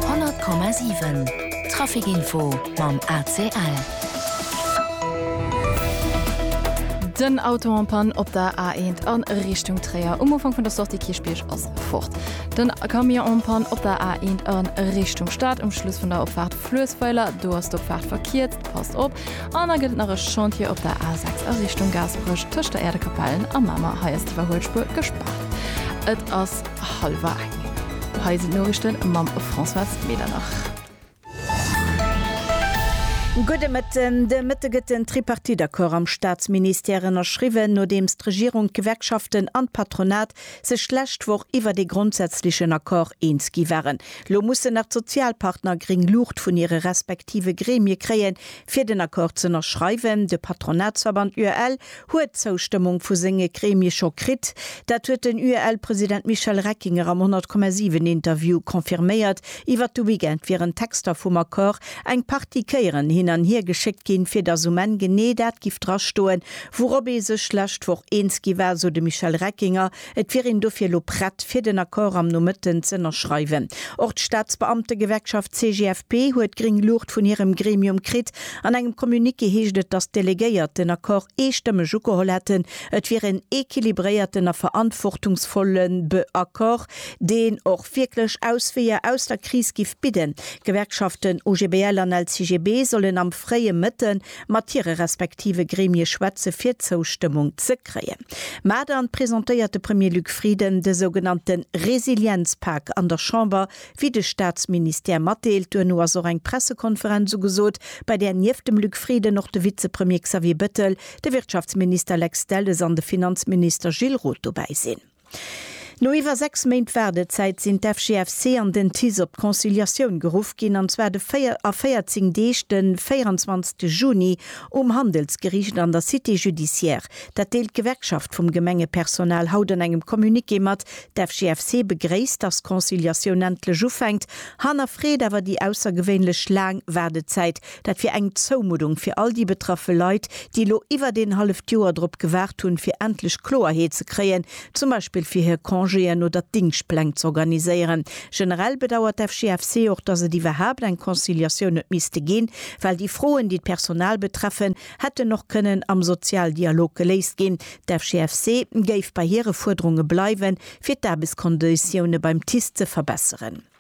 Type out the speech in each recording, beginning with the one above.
100,7 Trafic Info mam ACL. Den Auto en panne op der A1 an Richtung Tréier. Um Ufank vun der Sortie Kierchbierg ass fort. Den Camion en panne op der A1 an Richtung Stad. Um Schluss vun der Opfahrt Fluessweiler, do ass d'Opfahrt verkierzt. Passt op. An da gëtt et nach e Chantier op der A6 a Richtung Gaasperech, tëscht der Äerdekapellen a Mamer. Hei ass d'Iwwerhuelspuer gespaart. Et ass. Halwer eng. Hei sinn d'Noriichten mam Françoise Medernach. Gudde Mëtten. De Mëtte gëtt den Tripartite-Accord am Staatsministère ënnerschriwwen, nodeems d'Regierung, d'Gewerkschaften an d'Patronat sech d'lescht Woch iwwert ee grondsätzlechen Accord eens gi waren. Lo mussen nach d'Sozialpartner gréng Luucht vun hire respektive Gremie kréien, fir den Accord z'ënnerschreiwen. De Patronatsverband UEL huet d'Zoustëmmung vu senge Gremie scho kritt. Dat huet den UEL-President Michel Reckinger am 100,7 Interview confirméiert. Iwwer de Weekend wieren d'Texter vum Accord eng Partie Kéieren hin an hier geschéckt ginn, fir datt um Enn genee dat giff drastoen, wourop ee sech lescht Woch eens gi war, sou de Michel Reckinger. Et wier een dofir elo prett, fir den Accord am Nomëtten z'ënnerschreiwen. Och d'Staatsbeamtegewerkschaft CGFP huet gréng Luucht vun hirem Gremium kritt. An engem Communiqué heescht et, datt d'Delegéiert den Accord eestëmmeg ugeholl hätten. Et wier en equilibréierten a verantwortungsvolle Accord, deen och wierklech Ausweeër aus der Kris giff bidden. D'Gewerkschaften OGBL an LCGB sollen am fréie Mëtte mat hire respektive Gremie schwätze fir d'Zoustëmmung ze kréien. Mä dann presentéiert de Premier Luc Frieden de sougenannte Resilienzpak an der Chamber, wéi de Staatsministère matdeelt. Duerno ass och eng Pressekonferenz ugesot, bei där nieft dem Luc Frieden och de Vizepremier Xavier Bettel, de Wirtschaftsminister Lex Delles an de Finanzminister Gilles Roth dobäi sinn. No iwwer 6 Méint Waardezäit sinn d'FGFC an den TICE op d'Conciliatioun geruff ginn, an zwar de 4 a 14 Deeg de 24 Juni um Handelsgeriicht an der Cité judiciaire. Dat deelt d'Gewerkschaft vum Gemengepersonal haut an engem Communiqué mat. D'FGFC begréisst, datt d'Conciliatioun endlech ufänkt, hannerfreet awer déi aussergewéinlech laang Waardezäit, Dat wier eng Zoumuddung fir all déi betraffe Leit, déi elo iwwert een halleft Joer drop gewaart hunn, fir endlech Kloerheet ze kréien, zum Beispill fir hir Congéen oder d'Dingschtpläng z'organiséieren. Generell bedauert d'FGFC och, datt et iwwerhaapt eng Conciliatioun huet misste ginn, well déi Froen, déi d'Personal betreffen, hätten och kënnen am Sozialdialog geléist ginn. D'FGFC géif bei hire Fuerderunge bleiwen, fir d'Aarbechtskonditioune beim TICE ze verbesseren.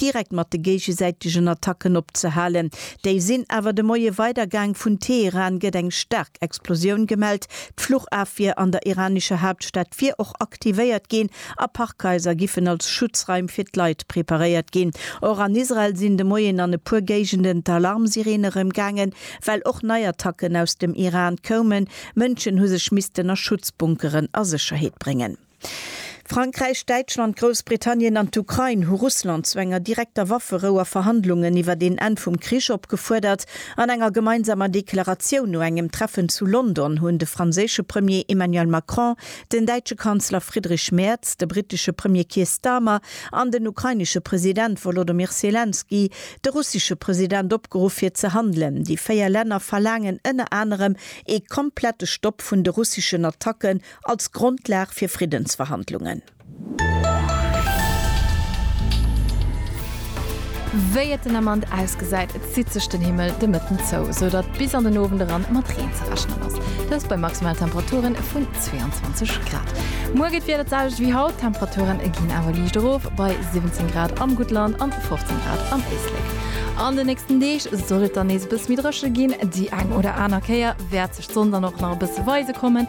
direkt mat de géigesäitegen Attacken opzehalen. Déi sinn awer de Moie weidergaang. Vun Teheran gëtt eng staark Explosioun gemellt. D'Fluchafwier an der iranescher Haaptstad wier och aktivéiert ginn a Parkhaiser giffen als Schutzraim fir d'Leit preparéiert ginn. Och an Israel sinn de Moien an e puer Géigenden d'Alarmsireene rëm gaangen, well och nei Attacken aus dem Iran koumen. Mënschen hu sech missten a Schutzbunkeren a Sécherheet bréngen. Frankräich, Däitschland, Groussbritannien an d'Ukrain hu Russland zu enger direkter Wafferou a Verhandlungen iwwert een Enn vum Krich opgefuerdert. An enger gemeinsamer Deklaratioun no engem Treffen zu London hunn de franséische Premier Emmanuel Macron, den däitsche Kanzler Friedrich Merz, de brittesche Premier Keir Starmer an den ukrainesche President Wolodomyr Selenskyj de russesche President opgeruff fir ze handelen. Déi véier Länner verlaangen ënner anerem ee komplette Stopp vun de russeschen Attacken Als Grondlag fir Friddensverhandlungen. Wéi et den Ament ausgesäit, zitt sech den Himmel de Mëtten zou, sou datt bis an den Owend eran mat Reen ze rechnen ass. Dëst bei maximale Temperature vun 22 Grad. Muer geet d'Wieder d'selwecht wéi haut, d'Temperature ginn awer liicht erof bei 17 Grad am Guttland an 15 Grad am Éislek. An den nächsten Deeg soll et dann nees e bësse méi dréche ginn, déi eng oder aner Kéier wäert sech d'Sonn dann och nach e bësse weise kommen.